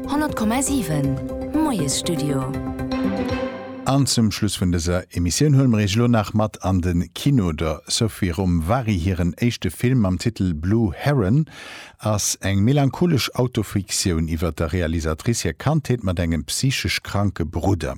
100,7 Moiesstudio. An zum Schluss vun dëser Emissioun huele mer Iech elo nach mat an de Kino. Der Sophie Romvari hiren éischte Film mam Titel Blue Heron ass eng melancholesch Autofiktioun iwwer der Realisatrice hir Kandheet mat engem psychesch kranke Brudder.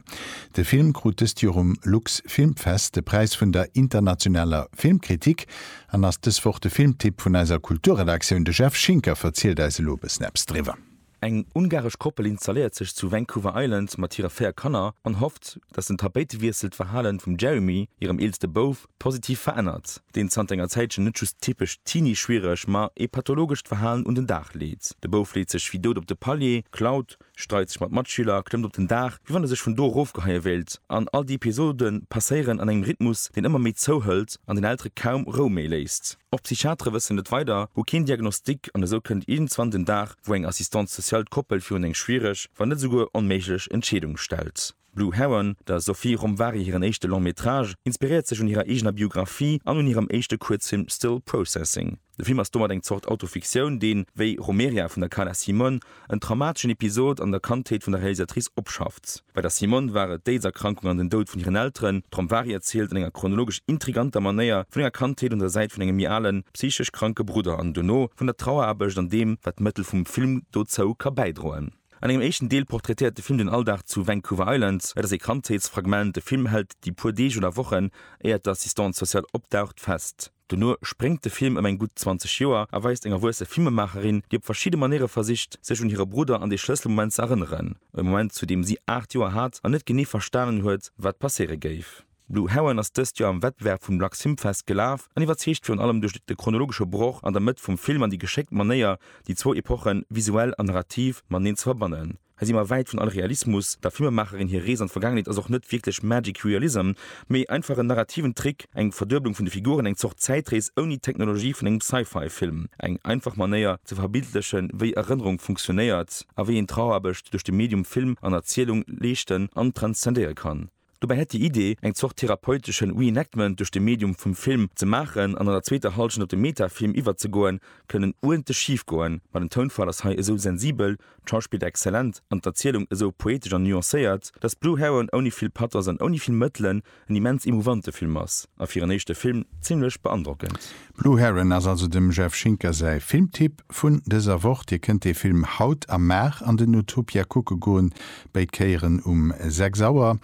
De Film krut dëst Joer um Lux Filmfest de Präis vun der internationaler Filmkritik An ass dës Woch de Filmtipp vun eiser Kulturredaktioun. De Jeff Schinker verzielt eis elo e bëssen eppes driwwer. Eng ungaresch Koppel installéiert sech zu Vancouver Island mat hire véier Kanner an hofft, datt den Tapéitewiessel d'Verhalen vum Jeremy, hirem eelste Bouf, positiv verännert, deen zanter enger Zäitchen net just typesch Teenie-schwiereg, ma ee pathologescht Verhalen un den Dag leet. De Bouf leet sech wéi dout op de Palier, klaut, streit sech mat Matschüler, klëmmt op den Daach, wéi wann e sech vun do erofgeheie wéilt, an all déi Episode passéieren an engem Rhythmus, deen ëmmer méi zouhëlt an den Eltere kaum Rou méi léisst. Och d'Psychiatere wëssen net weider, hu keen Diagnostic an esou kënnt iergendzwann den Dag, wou eng Assistante sociale d'Koppel virun eng schwiereg, wann net esouguer onméiglech Entscheedung stellt. Blue Heron, der Sophie Romvari hiren éischte Long Métrage, inspiréiert sech un hirer eegener Biographie an un hirem éischte Kuerzfilm Still Processing. De Film ass domat eng Zort Autofiktioun, deen, wéi Romeria vun der Carla Simón, en traumateschen Episod an der Kandheet vun der Realisatrice opschafft. Bei der Simón war et d'Aids-Erkrankung an den Doud vun hiren Elteren. D'Romvari erzielt an enger chronologesch intriganter Manéier vun enger Kandheet un der Säit vun engem méi alen, psychesch kranke Brudder an dono vun der Traueraarbecht an deem, wat d'Mëttel vum Film dozou ka bäidroen. An engem éischten Deel portraitéiert de Film den Alldag zu Vancouver Island. Et ass ee Kandheetsfragment, de Film hält déi puer Deeg oder Wochen, éiert d'Assistante sociale opdaucht, fest. Dono spréngt de Film ëm eng gutt 20 Joer a weist eng erwuesse Filmemaacherin, déi op verschidde Manéiere versicht, sech un hire Brudder an dee Schlësselmoment ze erënneren. E Moment, zu deem si 8 Joer hat an net genee verstanen huet, wat passéiere géif. Blue Heron ass dëst Joer am Wettbewerb vum Lux Film Fest gelaf an iwwerzeegt virun allem duerch de chronologesche Broch an der Mëtt vum Film an déi geschéckt Manéier, déi zwou Epochen visuell an narrativ mateneen ze verbannen. Hei si mer wäit vun all Realismus, der Filmemaacherin hir Rees an d'Vergaangenheet ass och net wierklech magic realism, mee einfach en narrativen Trick, eng Verdueblung vun de Figuren, eng Zort Zäitrees ouni d'Technologie vun engem Sci-Fi Film. Eng einfach Manéier ze verbildlechen, wéi Erënnerung funktionéiert a wéi een Trauerarbecht duerch de Medium Film an Erzielung leeschten an transzendéiere kann. Dobäi hätt déi Idee, eng Zort therapeuteschen Reenactment duerch de Medium vum Film ze maachen an an der zweeter Hallschent op de Metafilm iwwerzegoen, kënnen uerdentlech schif goen. Ma den Tounfall ass hei esou sensibel, d'Schauspill exzellent an d'Erzielung esou poetesch an nuancéiert, dass Blue Heron ouni vill Pathos an ouni vill Mëttelen en immens emouvante Film ass a fir en éischte Film zimlech beandrockend. Blue Heron ass also dem Jeff Schinker säi Filmtipp vun dëser Woch. Dir kënnt dee Film haut a mar an den Utopia kucke goen, béid Kéieren um 6 Auer.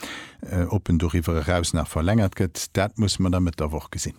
Ob en doriwwer eraus nach verlängert gëtt, dat musse mer da Mëtt der Woch gesinn.